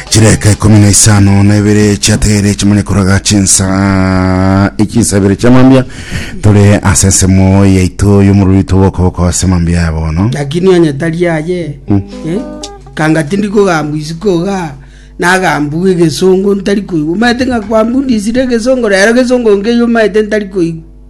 chireka ikumi na isano na ibere chiatere chimanye koraga chinsa ichinsa ibere chia mambia tore ase ensemo yaito y'omoruri toboko boko ase mambia ya bono lakini onye tari aye Mm. eh, kanga tindi kogambwa isiko ga nagambwa egesongo ntari koigwa omanyete ng'a kwambundisire egesongo rero egesongo nkeyo omanyete ntari koigwa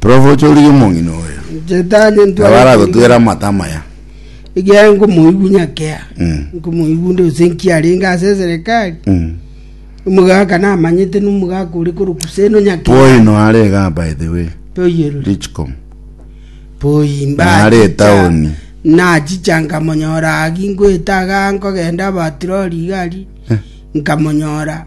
Prof ochorigwe omong'ina oyo. Shetani nabo ntware aragotwera amate amaya. ekiagera nkomoigwa nyakea Mm. nkomoigwa nde gose nkiarenge ase eserekari Mm. omogaka namanyete nomogaka ore korokwa seno nyakea Poino are iga by the way. poyerori Richcom. poimba Nare etaoni. nachicha nkamonyora agi ngoeta iga nkogenda abatirori iga aria Eh. nkamonyora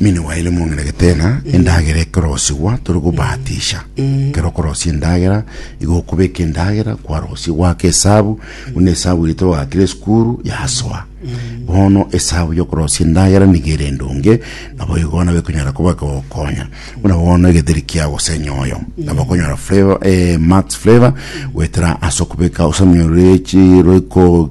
Mine waye nimong'ina getena endagera ekerosigwa tore gobatisha. Kero okorosia endagera igo okobeka endagera kwarosia gwaka esabu buna esabu ere twagakire esukuru yasoa. Bono esabu y'okorosia endagera nigo ere endonge nabo igo nabo ekonyara koba ekegokonya buna bono egetheri kia gose enyoyo nabo okonyora flavor eh marks flavor goetera ase okobeka osamio rue chi roiko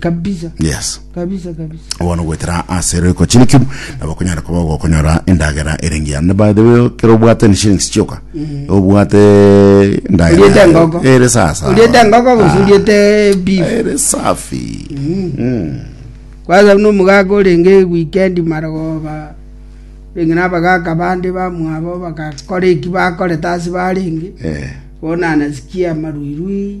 Kabisa. yes Kabisa kabisa. bono gwetera ase roiko chiriki nabo konyara koba ogokonyora endagera erengia ne by the way kero obwate ni shillings chioka obwate endagera Oriete ngogo. yayo. ere sasa Oriete ngogo Ah, gose oriete beef. ere safi Mm. Kwanza no mugaga orenge weekend marogoba. Renge na bagaka bande bamwabo bagakora eki bakore tasi barenge. Eh. Bona nasikia maruirui.